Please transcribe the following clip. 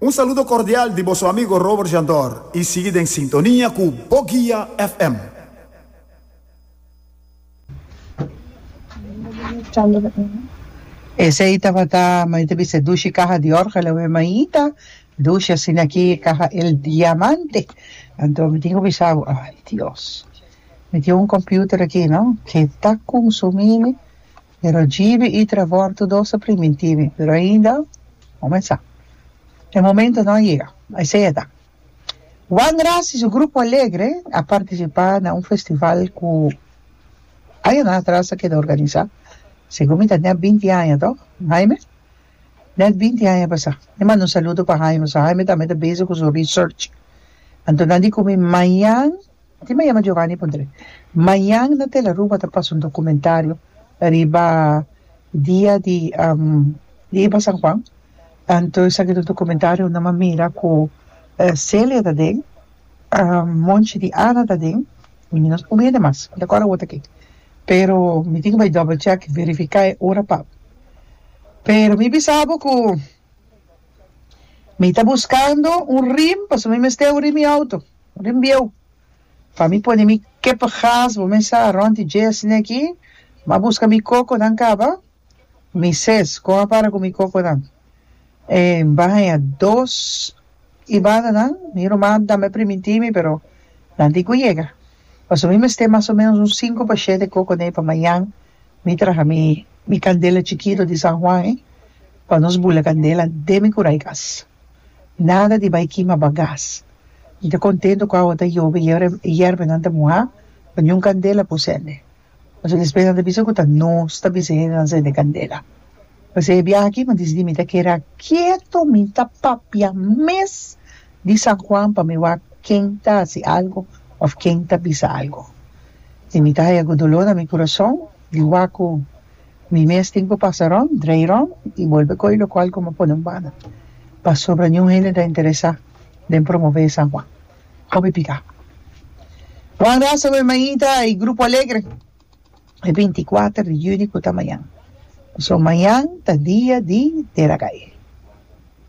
Un saludo cordial di boso amigo Robert Jandor y sigui den sintonia cu Bo Guia FM. Esey tabata mami ta bisa dushi caha di orga la we maita dushi asina aki caha el diamante anto mi tin cu bisa bo ay Dios mi tin un computer aki no ke ta consumimi Pero djibi y Trevor tur dos ta primi timi pero ainda comensá. E momento no a yega. Esey a ta. Juan Gracia y su grupo alegre a participá na un festival cu añanan atras a keda organizá. Segun mi ta net binti aña to, Jaime? Net binti aña a pasá. Mi manda un saludo pa Jaime pasobra Jaime tambe ta bezig cu su research. Anto nan di cu mi mañan. Tin ma yama Giovanni Pondre. Mañan na Tel Aruba ta pasa un dokumentario riba dia di di iba San Juan. Anto esaki ta un dokumentario unda mi a mira ku Celia ta den, monchi di Ana ta den i mi no sabia hende mas, mi ta kòrda wot aki. Pero mi tin ku bai double check, verifiká e ora pap. Pero mi bisa bo ku mi ta buskando un rim pasobra mi mester uri mi outo. Den bieu. Pa mi pone mi kep gas bo mesa rond di dies neki ma buska mi kokonan kaba mi ses kon a para ku mi kokonan e mba haña dos i bananan mi ruman tambe primintí mi pero nan tin ku yega paso mi mester mas o menos un sinku pa shete kokonan pa mañan mi traha mi kandela chikito di San Juan e pa nos bula kandela den mi kurai gas. Nada di bai kima bagas. Mi ta kontento ku awo ta yobe i yerbenan ta muhá pa niun kandela por sende. Pasobra despues nan ta bisa ku ta nos ta bisa hende nan sende kandela. P'esei e biaha aki mi disidí mi ta keda ketu, mi ta papia mes di San Juan pa mi wak ken ta hasi algu òf ken ta bisa algu. I mi ta haya ku doló na mi kurason di wak ku Mi mes tin cu pasa rond, drei rond y bolbe coge locual cu mi pone un banda pasobra niun hende ta interesa den promove e San Juan. Hopi pica. Juan Rasa cu e maita y Grupo Alegre. E binti cuater di juni cu ta mañan. Pasobra mañan ta dia di Tera Caye.